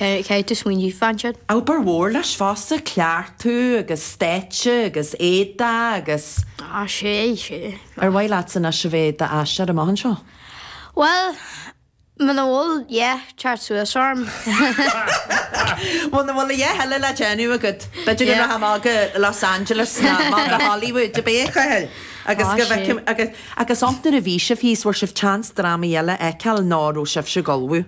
Caithfidh tú smaointiú fá sin. Obair mhór leis fosta cleachtadh agus stáitse agus éadaí agus. Á sé, sé. Ar mhaith leatsa anois a bheith i d'aisteoir amach anseo? Bhuel, muna bhfuil a dhath ag teacht suas orm. Muna bhfuil a dhath eile le déanamh agat, b'fhéidir go rachfá go Los Angeles nó go Hollywood ab é a Chathail agus go bhfeicim agus, agus nuair a bhí sibh thíos bhfuair sibh chance drámaí eile a fheiceáil nó an raibh sibhse ag ullmhú?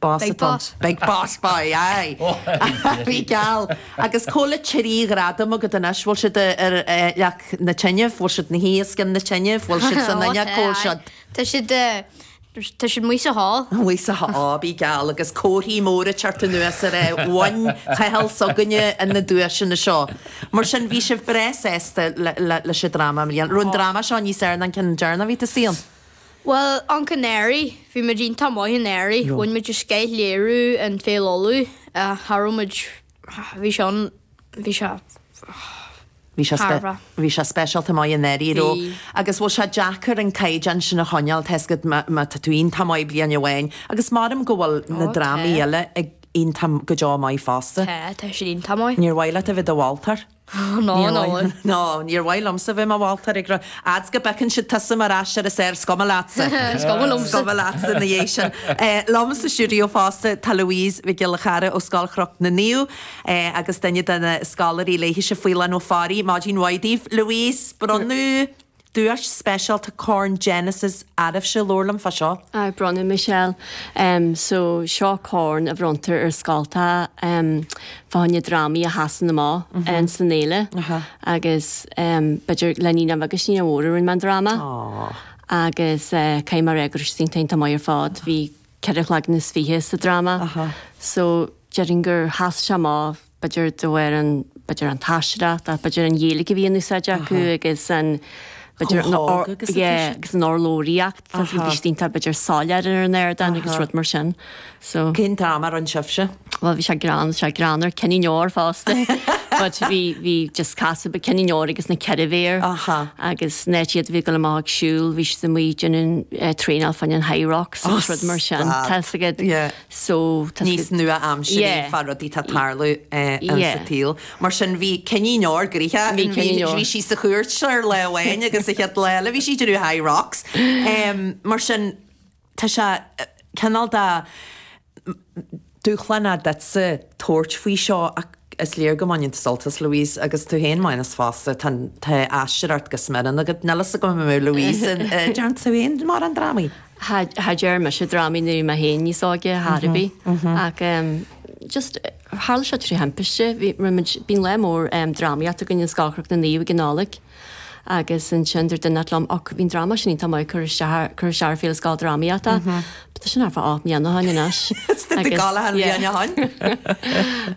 Bás Beidh atá. bás. Beidh bás. Beidh, aye. Bíodh geall. Agus cá bhfuil na trí ghradam agat anois, bhfuil siad ar leac na teineadh, bhfuil siad ina suí os cionn na teineadh, bhfuil siad san Ó, fhuinneog tá, cá bhfuil aye. siad? Tá siad, tá siad amuigh sa hall. Amuigh sa hall, á, bíodh geall. Agus comharthaí móra ag teacht anuas ar é, Uain Chathal s'againne ar na duaiseanna seo. Mar sin, bhí sibh breá sásta leis an dráma i mbliana. Raibh an dráma seo níos fhearr ná an ceann deireanach a bhí tú saol? Bhuel, anuraidh. Bhí muid iontach maith anuraidh. Bhain muid scoth léiriú in Féile Uladh. Cha raibh muid, bhí sé an, bhí sé, bhí sé thar a. Bhí sé speisialta maith anuraidh. Bhí. Agus bhfuil sé deacair an caighdeán sin a choinneáil, tá 'fhios agat, má, má tá tú iontach maith bliain amháin agus maram go bhfuil na drámaí eile ag iontach, go deo maith fosta. Tá, tá siad iontach maith. Níor mhaith leat a bheith i do mholtóir? Ná an ól. No, níor mhaith liomsa bheith i mo mholtóir a Chathail, a fhad is go bpiocann siad tusa mar aisteoir is fhearr, is cuma leatsa. Is cuma liomsa. Is cuma leatsa ina dhiaidh sin. Liom sa stiúideo fosta tá Louise Mhic Giolla Chearra ó Scoil Chnoc na Naomh agus duine de na scoláirí léithise, Faolán Ó Fearraigh. Maidin mhaith daoibh. Louise, bronnadh Duais speisialta Corn Genesis oraibhse labhair liom fá seo. Aye, bronnadh Michelle. Em, so seo corn a bhronntar ar scoltacha, em, fá choinne drámaí a sheasann amach insan fhéile. Agus, em, b'fhéidir le naíonáin bheaga agus naíonáin mhóra a rinne mé an dráma. Aww. Agus, eh, caithfidh mé a ráit go raibh siad iontach maith ar fad. Bhí ceithre chloigeann is fiche sa dráma. So, déarfainn gur sheas sé amach. b'fhéidir do fhoireann, b'fhéidir an t-aisteoireacht ach b'fhéidir an Ghaeilge a bhí in úsáid acu agus an, b'fhéidir an, yeah, agus an urlabhraíocht, tá siad distinct ar b'fhéidir soiléir ar an ardán agus rud mar sin. So. Cén dráma a rinne sibhse? Bhuel bhí sé greann, bhí sé greann ar Cinnín Óir fosta but bhí, bhí just casadh beag Cinnín Óir agus na Ceithre Bhéar agus in áit iad a bheith ag dul amach ag siúl bhí siad amuigh ag déanamh traenáil fán Hyrox agus rud mar sin, tá 'fhios agat. níos nua-aimsirí fá rudaí atá ag tarlú sa tsaol. Mar sin bhí Cinnín Óir, bhí sí sa chúirt ar lá amháin agus an chéad lá eile bhí sí ag déanamh Hyrox. Mar sin tá sé cineál de dúshlán duitse tabhairt faoi seo ach is léir go mbaineann tú sult as, Louise, agus tú féin Maghnus fosta, tá aisteoireacht go smior ionat. Níl a fhios agam an bhfuil Louise, déanann tú féin mórán drámaí? ní dearn mise drámaí nuair bhí mé féin níos óige ar bith ach just tharla sé trí thimpiste bhí againn bíonn lear mór drámaíochta againn i Scoil Chroich na Naomh ag an Nollaig agus ansin dúirt duine inteacht liom och bhí an dráma sin iontach maith a chur isteach cur isteach ar Féile Scoildrámaíochta tá sin thart fá Áth na Seáin anois Tá gá le hAnna Sheáin Sheáin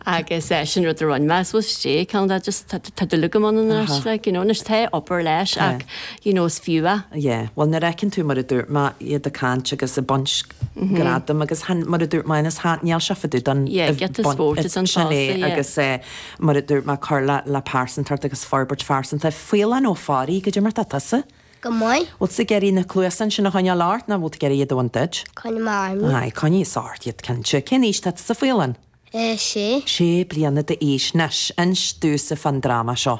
agus is é sin rud a rinn mé I suppose is é ceann de just tá dúil agam ann anois like you know anois tá obair leis ach you know is fiú é. Yeah, bhuel nuair a fheiceann tú mar a dúirt mé iad ag caint agus ag baint gradaim agus tháin mar a dúirt mé ins tháin níl sé fadú don Yeah, get the sport, it's an sin é tosa, yeah. agus eh mar a dúirt mé cur le le pearsantacht agus forbairt phearsanta. Faoileán Ó Fearraigh, goidé mar atá tusa? Go maith. Bhfuil tú ag iarraidh na cluasa ansin a choinneáil ort nó bhfuil tú ag iarraidh iad a bhaint díot? Coinneoidh mé orm. Aye, coinnigh thusa ort iad cinnte. Cén aois atá tusa Faoileán? Eh, sé. Sé bliana d'aois. Anois, inis domhsa fán dráma seo.